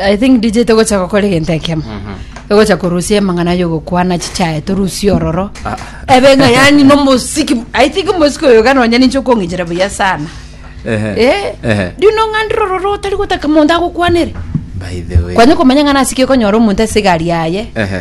i think dj togocha gokora egento ekemo togocha korusia emang'ana yogokwana chichae torusie ororo ebe ng'a yani nomosiki i think omosiki oyo iga nonya ninche okong'ichera buya sana Eh, riuno ng'a ndire ororo otari gotaka monto agokwanere By the way. kwanye komanya ng'a nasikie konyora omonto ase egari yaye Ehe.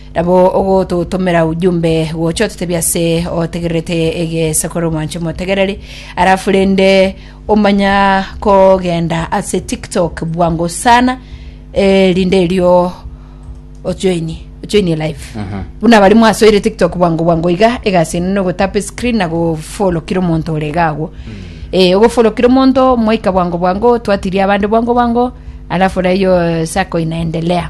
Nabo ogototomera ujumbe gocha ototebia ase otegererete egesekoro mwanche motegereri arafu rende omanya kogenda ase tiktok bwango sana eh, rinde erio ojoini ojoini live buna abari mwasoire tiktok bwango bwango iga egasi ene nogotapa screen na gofolo kira omonto ore iga agwo eh, ogofolo kira omonto mwaika bwango bwango twatiria abande bwango bwango alafu raiyo sako inaendelea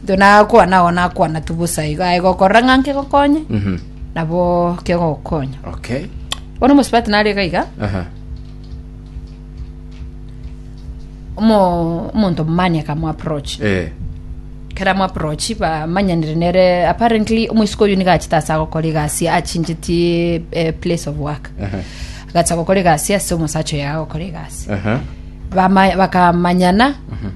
Intwe nakwana agwo nakwana tu bosa iga aye gokorora ng'a nkegokonye Mhm. nabo kegogokonya Okay. bono omosubati nare iga iga Aha. omo- omonto omomani akamoapproach Eh. kera moapproach bamanyanire nere apparently omoisiko oyo niga achete ase agokora egasi achingetie eh, place of work Aha. agacha gokora egasi ase omosacha oyo agokora egasi Aha. Bama- bakamanyana